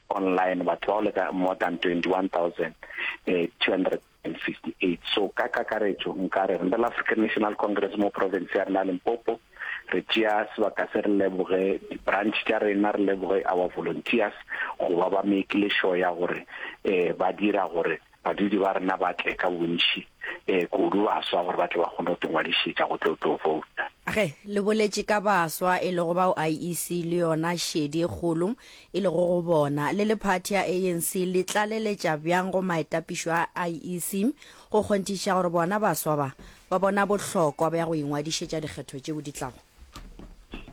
online batho ba go leka more than 21,258 so ka kakaretšo nkare re la African National Congress mo province ya rena Limpopo re tšea sebaka se re leboge di-branch tša rena re leboge our volunteers go ba ba make le sure ya gore um ba dira gore Badudi ba rena ba tle ka bontši, ee, kudu baswa, gore ba tle ba kgone go te ngwadišetša go tlo tlo vouta. Ge le boletše ka baswa, e lego bao IEC le yona šedi e kgolo e lego go bona, le le phathi ya ANC le tlaleletša bjang go maetapišo a IEC go kgonthišiša gore bona baswa ba, ba bona bohlokwa bja go ingwadišetša dikgetho tšeo di tlago?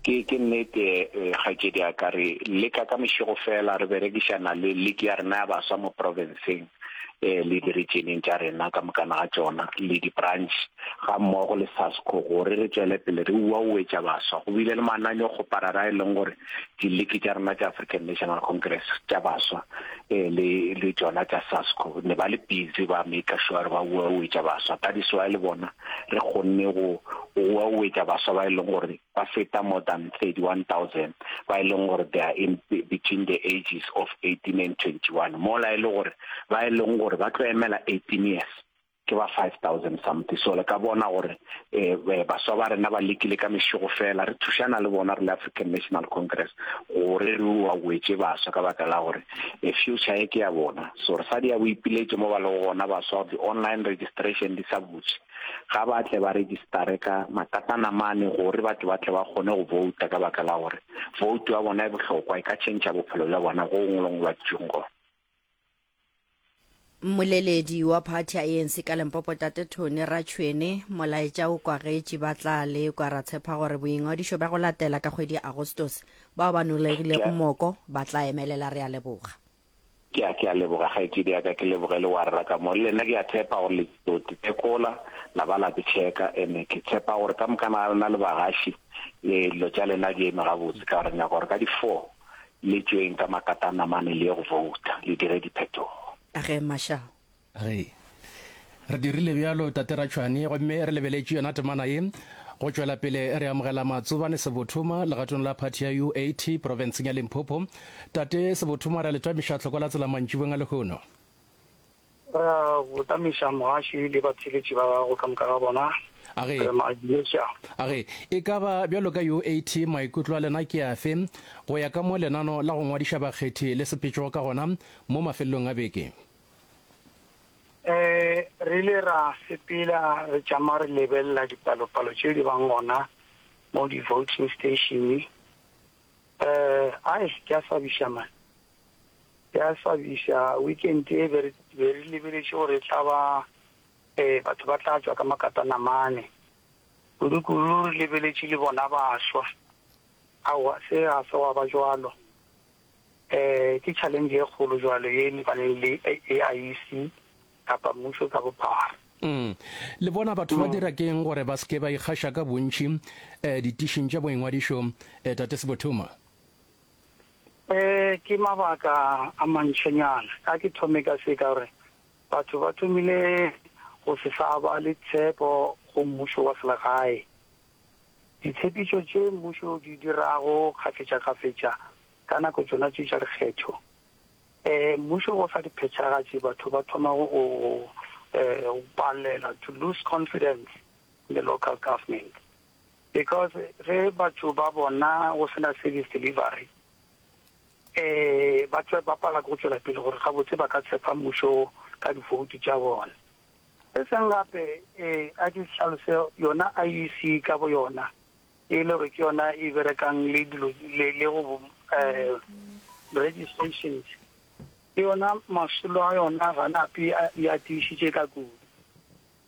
Ke, ke nnete, eh, kgaetšedi ya ka. Re leka ka mešego feela, re berekišana le Liki ya rena ya Baswa mo profenseng, eh, le diretšeneng tša rena ka mokana ga tšona, le di-branch, ga mmogo le SASCO, gore re tšwele pele re uauetša baswa. Go bile le mananyo kgoparara a e leng gore diliki tša rena tša African National Congress tša baswa eh, le le tšona tša SASCO ne ba le busy ba make sure ba bua o etša baswa ka diswa le bona re kgonne go bua o etša baswa ba e leng gore ba feta more than 31000 ba e leng gore they are in between the ages of 18 and 21 mola e le gore ba e leng gore ba tlo emela 18 years ke ba 5000 something so le ka bona gore um baswa ba rena ba lekile ka mešego fela re thušana le bona re le African National Congress gore re wa wetse baswa ka baka la gore e future e ke ya bona so re sa di ya boipiletše mo ba le gona baswa di online registration di sa butše ga ba tle ba registare ka makatana mane gore batho ba tle ba kgone go vouta ka baka la gore vote ya bona e bohlokwa e ka change bophelo bja bona go ngolong lwa tšungo Mmoleledi wa phathi ya ANC ka Limpopo Tate Tony Ratšhwene molaetša o kwagetši ba tla lekwa ra tshepa gore boingwadišo bja go latela ka kgwedi ya Agostose bao ba nolegilego moko ba tla emelela re a leboga. Ke a, ke a leboga kgaetšedi ya ka, ke leboge le warra ka mo. Le lena ke a tshepa gore le tlo tekola la ba la ke tšheka ene ke tshepa gore ka mokana ga lena le bagaši, ee, dilo tša lena di eme gabotse ka gore nyaka gore ka di four, Le tšweng ka makatana mane le ye go vouta, le dire diphetogo. A ge Marshall. Re, re dirile bjalo, Tate Ratšhwani, gomme re lebeletše yona temana ye. Go tšwela pele, re amogela Matsobane Sebothoma legatong la phathi ya UAT profenseng ya Limpopo. Tate Sebothoma, re a le twamiša tlhoko la tsela mantšibeng a lehono. Ra go tamisa Moaši le batheeletši ba gagwe ka moka ga bona, A ge, re mabileša. a ge, e ka ba bjalo ka UAT, maikutlo a lena ke afe go ya ka mo lenano la go ngwadiša bakgethi le sepetšego ka gona mo mafelelong a beke? Ee, re ile ra sepela re tšama re lebelela dipalopalo tše di bang gona mo di-voting station. Ee, ai, ke a swabiša man. Ya swabiša, weekend e be re lebeletše gore e tla ba batho ba tla tšwa ka makatana mane, kudu-kudu re lebeletše le bona baswa. Aowa, se ga se gwa ba bjalo. Ke challenge e kgolo bjalo ye e lebaneng le AIC kapa mmušo ka bophara. Le bona batho ba dira ke'ng gore ba se ke ba ikgaša ka bontši ditišing tša boingwadišo, Tate Sebotuma? Ee, ke mabaka a mantšonyana. Ka ke thome ka se ka gore batho ba thomile go se sa ba le tshepo go mmušo wa selegae. Ditshepetšo tše mmušo o di dirago kgafetšakgafetša ka nako tšona tše tša dikgetho, mmušo o sa di phethagatše, batho ba thoma go go palela, to lose confidence in the local government. Because ge batho ba bona go sena service delivery ba tšwa ba pala ke go tšwela pele gore gabotse ba ka tshepa mmušo ka di vote tša bona. Se sengwe gape a ke hlalose yona IEC ka bo yona e le gore ke yona e berekang le dilo le go registrations ke yona masolo a yona ga nape ya tiišitše ka kudu.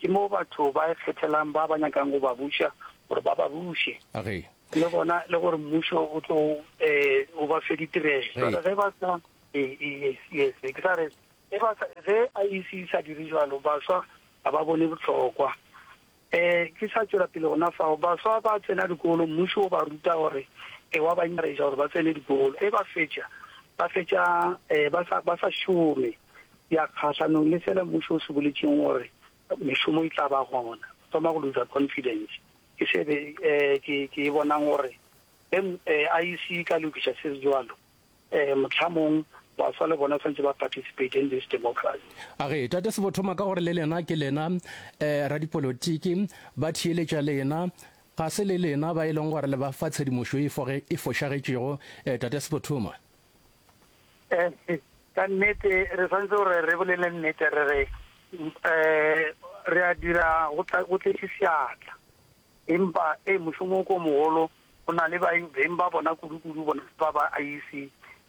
Ke moo batho ba ikgethelang ba ba nyakang go ba buša gore ba ba buše. Age. Le gona le gore mmušo o tlo um o ba fe ditirelo. Jwale ge ba sa e, e, yes yes ke sa re ge ba sa ge IEC e sa dire jalo baswa ga ba bone bohlokwa. Eh ke sa tšwela pele gona fao baswa ba tsena dikolo mmušo o ba ruta gore e wa ba encourage gore ba tsene dikolo e ba fetša ba fetša um ba sa ba sa šome. ya kgahlanong le sela mmušo o se boletšeng gore mešomo e tla ba gona o thoma go loser confidence ke se be eh, ke ke e bonang gore em eh, IEC e ka lokiša se se jwalo eh, motlhamong baswa le bona santse ba participate in this democracy a re tate sebo thoma ka gore le lena ke lena eh, radipolotiki ba thiyeletša lena ga se le lena ba e leng gore le ba fa tshedimošo e foge- e fošagetšego eh, tate sebo thoma Ka nnete re santse gore re bolele nnete re re re a dira go tletse seatla empa e mošomo o ko mogolo go na le beng ba bona kudu-kudu bona ba ba IEC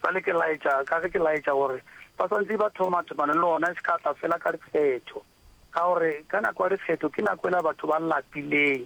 sa le ke laetša ka ge ke laetša gore ba santse ba thoma thomane le ona se ka tla fela ka dikgetho ka gore ka nako ya dikgetho ke nako e la batho ba lapileng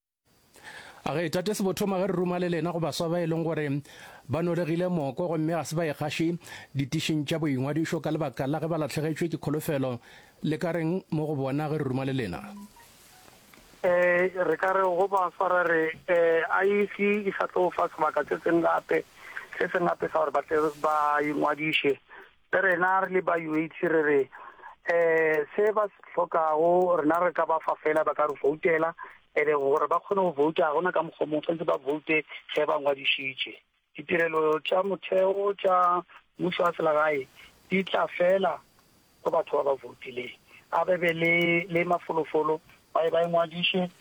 A re, Tate Sebothoma, ge re ruma le lena go baswa ba e leng gore ba nolegile moko gomme ga se ba ekgaše ditišing tša boingwadišo ka lebaka la ge ba latlhegetšwe ke kholofelo, le ka reng mo go bona ge re ruma le lena? Um re ka re go baswa ra re, Um IEC e sa tlo o fa sebaka se sengwe gape, se sengwe gape sa gore ba tle ba ingwadiše. Rena re le ba UAC re re se ba se hlokago rena re ka ba fa fela ba ka re voutela ene gore ba kgone go vouta ga gona ka mokgwa mongwe tshwanetse ba voute ge ba ngwadišitše. Ditirelo tša motheo tša mmušo wa selegae di tla fela go batho ba ba voutileng. A be be le le mafolofolo ba ye ba ingwadiše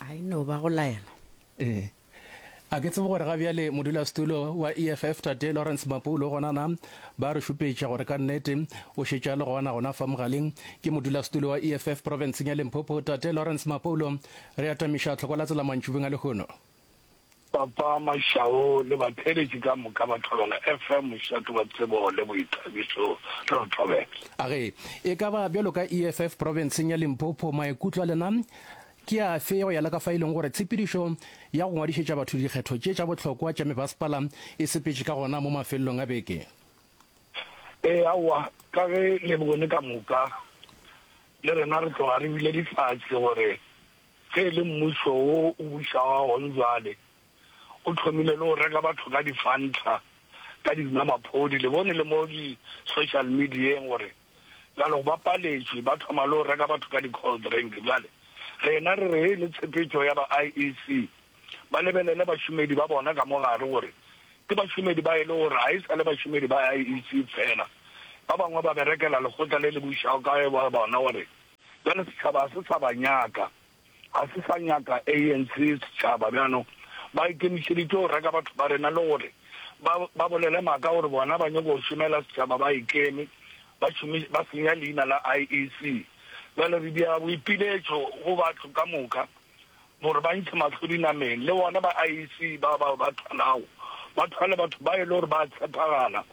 a e no ba go laela ee a ke tsebe gore ga bjale modulasetulo wa eff tate lawrence mapulo gona na ba re šupetša gore ka nnete o šetša le gona gona fa mogaleng ke modulasetulo wa eff provinceng ya limpopo tate lawrence mapulo re atamiša tlhoko la tsela mantšubeng a lehono Papa Mashau le batheeletši ka moka ba thobela FM, mošate wa tsebo le boithabišo. Re re thobela. A re, e ka ba bjalo ka EFF profenseng ya Limpopo, maikutlo a lena ke afe go ya le ka fa e leng gore tshepedišo ya go ngwadišetša batho dikgetho tše tša bohlokwa tša mebasepala e sepetše ka gona mo mafelelong a beke? E, aowa, ka ge le bone ka moka le rena re tloga re bile difahse gore Ge e le mmušo wo o bušago wa gona bjale, o thomile le go reka batho ka difantlha, ka dinwamaphodi, le bone, le mo di-social medieng gore bjale go bapaletšwe, ba thoma le go reka batho ka di-cold drink. Bjale rena re re ge e le tshepetšo ya ba IEC, ba lebelele bašomedi ba bona ka mo gare gore ke bašomedi ba e le gore ga e sa le bašomedi ba IEC feela, ba bangwe ba berekela lekgotla le le bušago ka ge ba bona gore Bjale setšhaba ga se sa ba nyaka, ga se sa nyaka ANC. Setšhaba bjano ba ikemišeditše go reka batho ba rena le gore ba, ba bolele maaka gore bona ba nyoko go šomela setšhaba ba ikeme, ba šomi, ba senya leina la IEC. Bjale re dia boipiletšo go batho ka moka. gore ba ntšhe mahlo dinameng, le bona ba IEC ba bao ba thwalago ba thwale batho ba e le gore ba a tshepagala,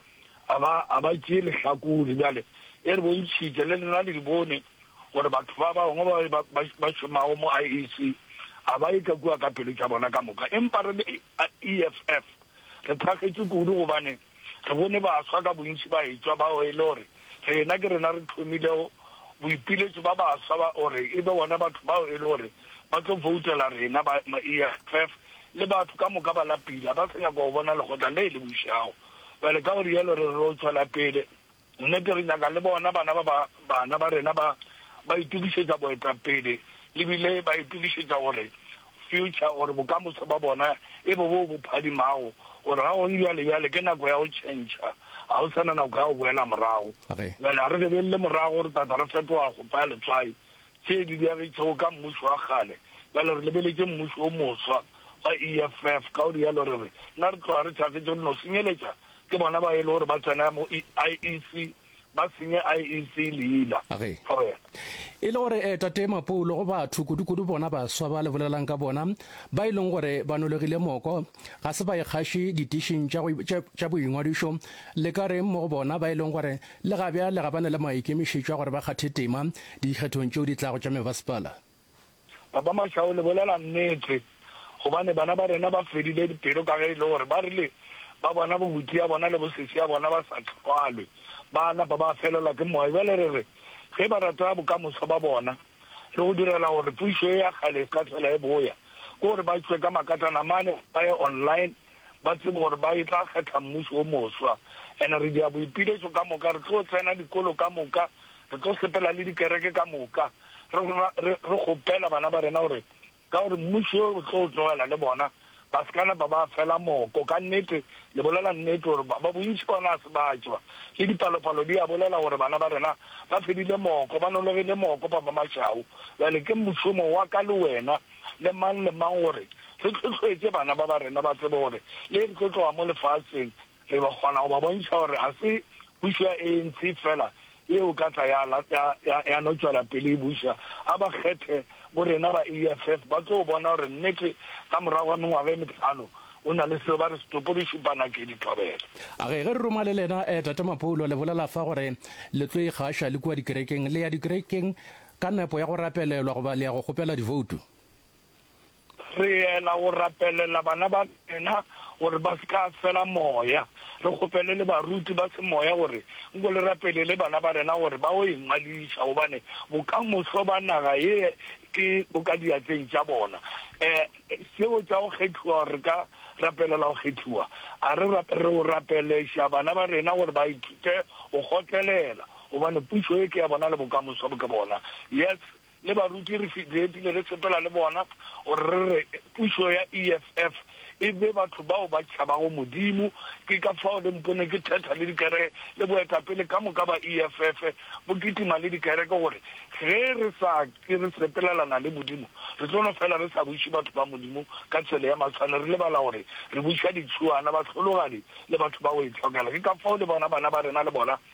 ga ba, ga ba tšee lehlakore. Bjale e re bontšhitše, le lena le di bone, gore batho ba bangwe ba ba, ba, ba šomago mo IEC ga ba eka kua ka pelo tša bona ka moka. Empa re le EFF re thakgetše kudu, gobane Re bone baswa ka bontši ba etšwa bao e le gore rena ke rena re tlhomilego boipiletšo ba baswa ba gore e be bona batho bao e le gore ba tlo voutela rena ba EFF le batho ka moka ba lapile, ga ba sa nyaka go bona lekgotla le le bušago bjale. Ka go rialo re re o tšwela pele. Nnete, re nyaka le bona bana ba ba, bana ba rena ba, ba itokišetša boetapele, e bile ba itokišetša gore future, gore bokamoso bja bona e be boo bo phadimago, gore ga go bjale, bjale ke nako ya go tšhentšha, ga go sa na nako ya go boela morago. Bjale ga re lebelele morago, re tla tla re fetoga go paya letswai, Tše di diagitšego ka mmušo wa kgale. Bjale re lebeletše mmušo wo moswa wa EFF, ka go rialo re re, Na re tloga re thakgetše go no senyeletša ke bona bao e lego gore ba tsena mo IEC, ba senye IEC leina? Ge e le gore Tate Mapoulo go batho, kudukudu bona baswa ba le bolelang ka bona, ba e leng gore ba nologile moko, ga se ba ikgaše ditišing tša boingwadišo, le ka reng mo go bona ba e leng gore Le ga bjale ga ba na le maikemišetšo a gore ba kgathe tema dikgethong tšeo di tlago tša mebasepala. Papa Mashau, le bolela nnete, gobane bana ba rena ba fedile dipelo ka ge e le gore ba rile ba bona bobuti ya bona le bosesi ya bona ba sa hlwalwe, ba napa ba felelwa ke moya. Bjale re re ge ba rata bokamoso ba bona le go direla gore pušo ye ya kgale e se ka hlwela e boya, ke gore ba tšwe ka makatana mane ba ye online. ba tsebe gore ba e tla kgetha mmušo o moswa. And re dia boipiletšo ka moka, re tlo tsena dikolo ka moka, re tlo sepela le dikereke ka moka, re, re, re kgopela bana ba rena gore ka gore mmušo yo o tlo tlogela le bona, ba se ka napa ba fela moko. Ka nnete, le bolela nnete gore ba, ba bontši bona a se ba tšwa, le dipalopalo di a bolela gore bana ba rena ba fedile moko, ba nologile moko, ba ba mašau. Bjale ke mošomo wa ka le wena. le mang le mang gore re tlhohloetše bana ba ba rena ba tsebe gore le re tlo tloga mo lefaseng re ba kgona go ba bontšha gore ga se pušo ya ANC fela ye o ka tla ya, ya, ya, ya no tšwela pele e buša. A ba kgethe bo rena ba EFF, ba tlo bona gore nnete ka morago ga mengwaga e metlhano o na le seo ba re setopo di šupa nake di thobela. A ge, ge re roma le lena, eh, Tate Mapoulo, le bolela fa gore le tlo ikgaša le kua dikerekeng, le ya dikerekeng, Ka nepo ya go rapelelwa goba le ya go kgopela divoutu? Re yela go rapelela bana ba rena gore ba se ka fela moya. Re kgopele le baruti ba semoya gore nko le rapelele bana ba rena gore ba yo ingwadiša gobane bokamoso ba naga ye ke bo ka diatleng tša bona. Seo tša go kgethiwa gore re ka rapelela go kgethiwa, a re rapelele go rapeleša bana ba rena gore ba ithute go kgotlelela, Gobane pušo ye ke ya bona le bokamoso bo ke bona. Yes, le baruti re fitiretile re sepela le bona gore re re pušo ya EFF e be batho bao ba tšhabago Modimo. Ke ka fao le mpone ke thetha le dikere le boetapele ka moka ba EFF bo kitima le dikereke gore ge re sa ke re sepelelana le Modimo re tlo no fela re sa buše batho ba Modimo ka tsela ya matshwane re lebala gore re buša ditšhuana, bahlologadi le batho ba go itlhokela. Ke ka fao le bona bana ba rena le bona